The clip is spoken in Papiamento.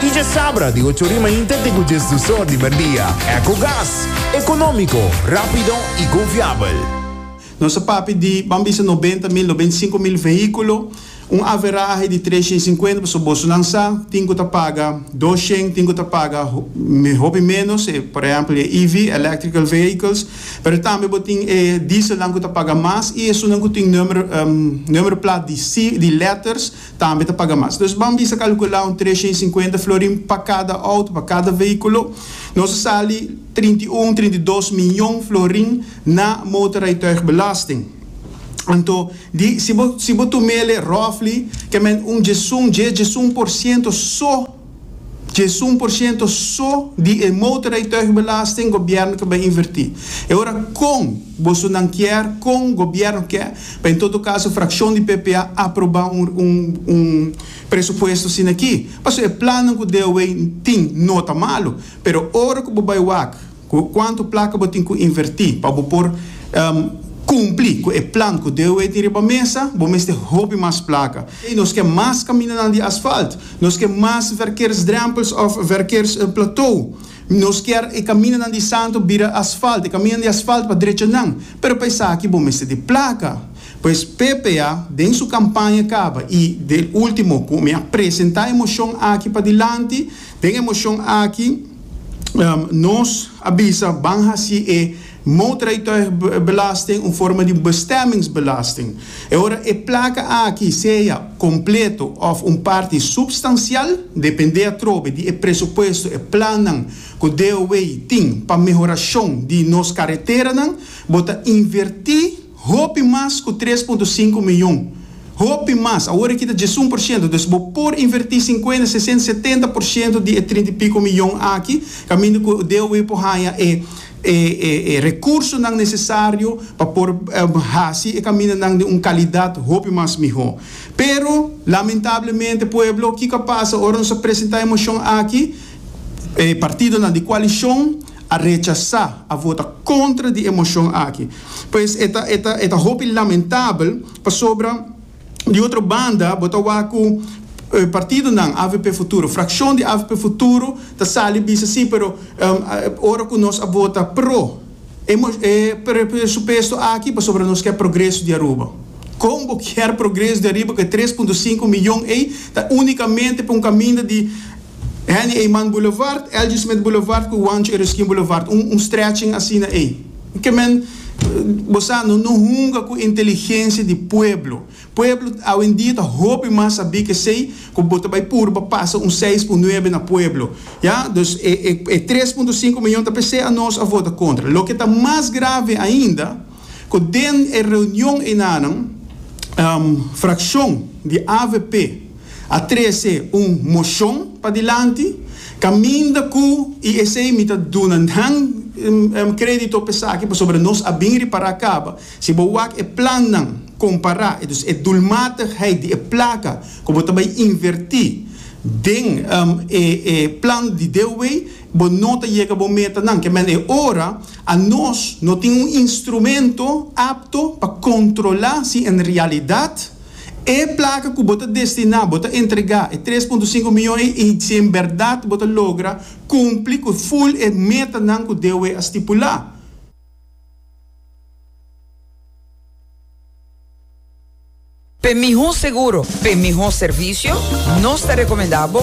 Dje sabra di ocho rima inter te ku djes dusor di merdia. Ecogas, ekonómiko, rápido i konfiabel. Nos a papia di, ban bisa nobenta mil, nobenta i sinku mil vehíkulo, un averahe di tres shen sinkuenta, pasobra bosonan sa tin ku ta paga dos shen, tin ku ta paga hopi ménos, e por ehèmpel e EV, Electrical Vehicles, pero tambe bo tin e dieselnan ku ta paga mas i esunnan ku tin nùmero nùmero plat di si di lèters. tambe ta paga mas. Nos ban bisa kalkulá un tresha i sinkuenta florin pa kada outo, pa kada veíkulo. Nos a sali trinta i un, trinta i dos mion florin na motorrijtuigbelasting. Anto, di, si bo si bo tum'é lei roughly, ke men un djesun, djes djesun por siento so, Djesun por ciento so di e motorrijtuigbelasting gobierno ke bai inverti. E ora kon boso nan kier, kon gobierno ke, pa en todo caso fraccion di ppa aproba un presupuesto asina aki. Pasobra e plannan ku DOW tin no ta malo, pero ora ku bo bai wak, Cu cuanto placa bo tin cu inverti pa bo por cumpli cu e plan cu DOE tin riba mesa? Bo mester hopi mas placa. Nos ke mas caminanan di asfalt. Nos ke mas verkeersdrempels of verkeersplateau. Nos kier e caminanan di Santo bira asfalt, e caminanan di asfalt pa drechanan. Pero pa esaki bo mester tin placa. Pues PPA den su campaña caba y den ultimo cu mi a presenta e mocion aki padilanti, Den e moshon aki nos a bisa ban hasi e motorrijtuigbelasting un forma di bestemmingsbelasting. E ora e plaka aki sea kompleto òf un parti supstansial, dependé atrobe di e presupuesto, e plannan ku DOW tin pa mehorashon di nos kareteranan, bo ta invertí, Hopi mas ku tres punto sinku mion. Hopi mas. Awor e kita djes un por shento. Dus bo por invertí sinkuenta, sesenta, setenta por shento di e trinta i piko mion aki kaminda ku DOW por haña e e rekursonan nesesario pa por hasi e kamindanan den un kalidat hopi mas mihó. Pero, lamentablemente, pueblo, kiko a pasa ora nos a presentá e moshon aki? E partidonan di kualishon. a rechasá, a vota kontra di e moshon aki. Pues e ta, e ta, e ta hopi lamentabel pasobra di otro banda bo ta wak ku partidonan avp futuro, frakshon di avp futuro ta sali bisa si pero ora ku nos a vota pro e e presupuesto aki pasobra nos ke progreso di Aruba. Kon bo kier progreso di Aruba ku e tres punto sinku miyon ei ta unikamente pa un kaminda di Henny Eman Boulevard, Elgie Smith Boulevard ku Juancho Ereskine Boulevard, un un stretching asina ei. Ke men, bo sa, no no hunga ku inteligensia di pueblo. Pueblo awendia ta hopi mas sabí ku esei ku bo ta bai purba pasa un seis ku un nuebe na pueblo, ya. Dus e e e tres punto sinku miyon ta p'esei anos a vota kontra. Loke ta mas grave ainda, ku den e reunion einanan, frakshon di avp, a trece un mocion padilanti, caminda cu y esey mi ta duna nan credito pa esaki pasobra nos a bin ripara caba, si bo wak e plannan compara entonces e doelmatigheid di e placa cu bo ta bay inverti den e plan di deewey bo no ta yega bo metanan, kemen e ora a nos no tin un instrumento apto pa controla si en realidad. E plaka ku bo ta destiná, bo ta entregá, e tres punto sinku mion ei i si en bèrdat bo ta logra kumpli ku ful e metanan ku DOE a stipulá. P'e mihó seguro, p'e mihó servisio, nos ta rekomendá bo.